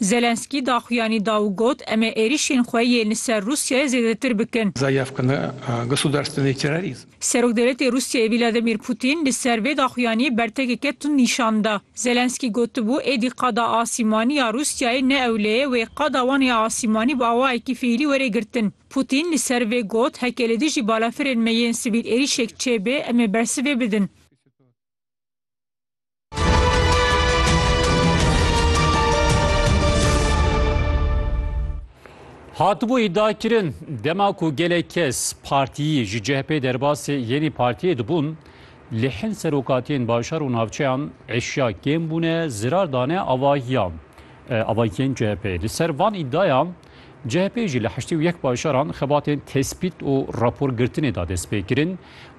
Zelensky daxuyanî da û got, Em ê êrîşên xwe yên li ser Rûsyayê zêdetir bikin. Serokdewletê Rûsyayê Vladimir Putin li ser vê daxuyanî bertekeke tund nîşan da. Zelensky gotibû, Êdî qada asîmanî ya Rûsyayê ne ewle ye wê qada wan ya asîmanî bi awayekî fiîlî were girtin. Putin li ser vê got, Heke li dijî balafirên me yên sivîl êrîşek çêbê em ê bersivê bidin. Hatibû îdia kirin dema ku gelek kes partiyî ji CHP'ê derbasê yenî partiyê dibûn, li hin serokatiyên bajar û navçeyan eşya kêm bûne, zirar dane avahiyan, e, avahiyên CHP'ê. Li ser van îdiayan CHP jî li heştê û yek bajaran xebatên tespît û rapor girtinê da destpêkirin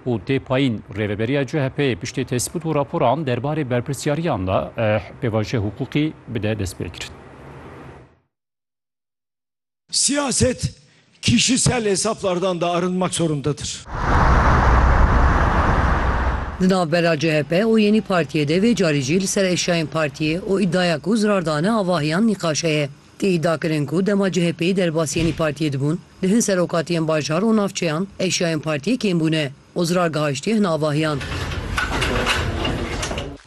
û tê payîn rêveberiya CHP'ê piştê tespît û raporan derbarê berpirsyariyan da pêvajoya hiqûqî bide destpêkirin. Siyaset kişisel hesaplardan da arınmak zorundadır. Di navbera CHP û Yenî Partiyê de vê carî jî li ser eşyayên partiyê û îdaya ku zirardane avahiyan nîqaşe ye. Tê îdia kirin ku dema CHP'yê derbas yenî partiyê dibûn, di hin serokatiyên bajar û navçeyan eşyayên partiyê kêm bûne û zirar gihayştiye hin avahiyan.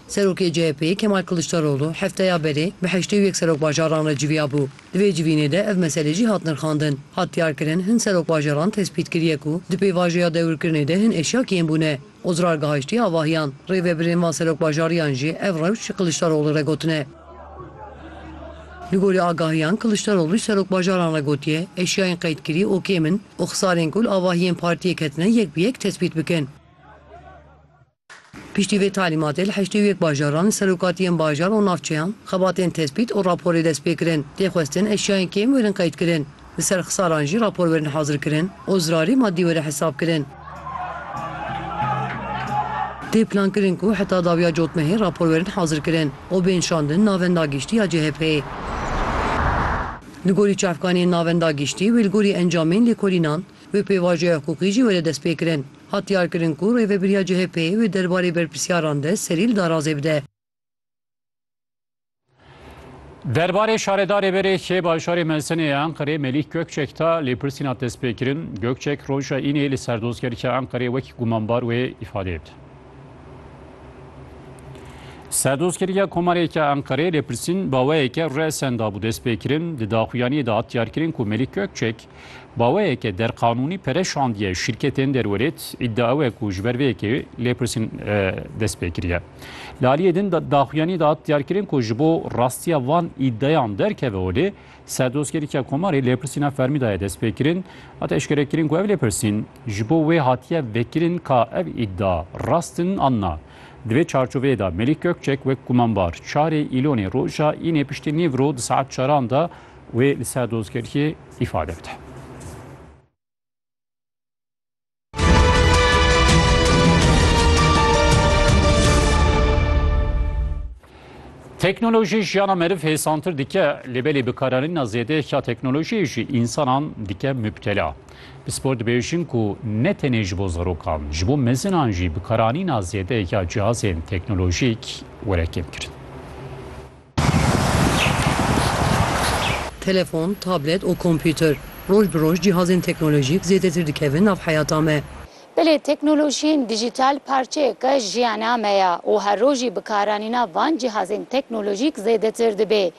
Serokê CHP'yê Kemal Kiliçdaroglu hefteya berê bi heştê û yek serokbajaran re civiyabû. Di vê civînê de ev meselê jî hat nirxandin. Hat diyarkirin hin serokbajaran tespît kiriye ku di pêvajoya dewirkirinê de hin eşya kêm bûne. Ozrar gihayştî avahiyan. Rêvebirên van serokbajariyan jî ev rewş ji Kiliçdaroglu re gotine. Li gorî agahiyan Kiliçdaroglu ji serokbajaran re gotiye, eşyayên qeydkirî û kêm in û xisarên ku li avahiyên partiyê ketine yek bi yek tesbît bikin. Piştî vê talîmatê li heştê û yek bajaran li serokatiyên bajar û navçeyan xebatên tesbît û raporê destpêkirin tê xwestin eşyayên kêm wêrin qeydkirin. Li ser xsaran jî rapor werin hazirkirin û zirarê madî were hesabkirin. Tê plankirin ku heta dawiya cotmehê rapor werin hazirkirin û bên şandin Navenda Giştî ya CHP'ê. Li gorî çavkaniyên Navenda Giştî wê li gorî encamên lêkolînan wê pêvajoya hiqûqî jî were destpêkirin. Hat diyarkirin ku rêvebiriya CHP'ê wê derbarê berpirsyaran de serî li darazê bide. Derbarê şaredarê berê kê bajarê Mersinê ya Enqerê Melîh Gökçek ta lêpirsîna destpêkirin Gökçek roja înê li ser dozgerka Enqerê wekî gumanbar wê îfadeyê bide. Serdozgerîya Komarêka Enqerê lêpirsîn baweyeke resen dabû destpêkirin di daxuyaniyê de hat diyarkirin ku Melîh Gökçek baweyeke derqanûnî pere şandiye şîrketên derwelêt îdia ew e ku ji ber vê yekê lêpirsîn destpêkiriye. Li aliyê din daxuyanî de hat diyarkirin ku ji bo rastiya van îdeyan derkeve holê, serdozkeriya komarê lêpirsîna fermî daye destpêkirin. Hate eşkerekirin ku ev lêpirsîn ji bo wê hatiye vekirin ka ev îdia rast in an na. Di vê çarçoveyê de Melîk Gökçek wek kumanbar çarê Îlonê roja înê piştî nîv ro di saet çaran de wê li serdozkeriyê îfade bide. Teknolojî jiyana meriv hêsantir dike lê belê bikaranîna zêdeyek ya teknolojiyê jî însanan dike mubtela. Bi spor dibêjin ku ne tenê ji bo zarokan ji bo mezinan jî bikaranîna zêdeyek ya cihazên teknolojîk were kêmkirin. Telefon, tablet û kompûter, roj bi roj cîhazên teknolojîk zêdetir dikevin nav heyata me. Belê teknolojiyên dijîtal parçeyeke jiyana me ye û her rojî bikaranîna van cîhazên teknolojîk zêdetir dibê.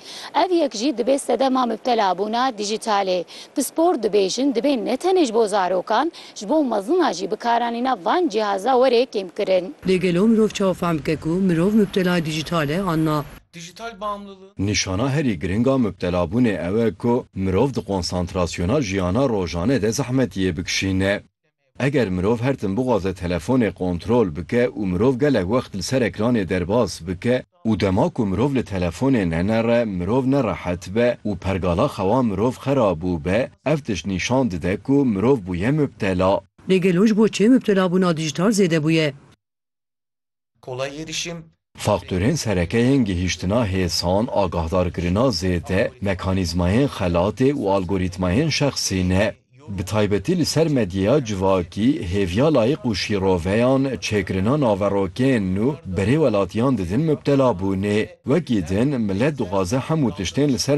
Ev yek jî dibê sedema mibtelabûna dijîtalê. Pispor dibêjin dibê ne tenê ji bo zarokan Ji bo mezina jî bikaranîna van cîhaza were kêmkirin. Lê gelo mirov çawa fehm bike ku mirov mubtela dîjîtal e an na? Dîjîtal bamlılığ. Nîşana herî giring a mubtelabûnê ew e ku mirov di konsantrasyona jiyana rojane de zehmetiyê bikişîne. Eger mirov her tim bixwaze telefonê kontrol bike û mirov gelek wext li ser ekranê derbas bike, Û dema ku mirov li telefonê nenere mirov nerehet be û pergala xewa mirov xera bû be, ev tişt nîşan dide ku mirov bûye mubtela. Lê gelo ji bo çê mubtelabûna dîjîtal zêde bûye? Kolay hêrişîm. Faktorên sereke yên gihîştina hêsan, agahdarkirina zêde, mekanîzmayên xelatê û algorîtmayên şexsî ne. Bi taybetî li ser medyeya civakî hêviya layîq û şîroveyan çêkirina naverokên nû berê welatiyan didin mubtela bûnê. Wekî din, milet dixwaze hemû tiştên li ser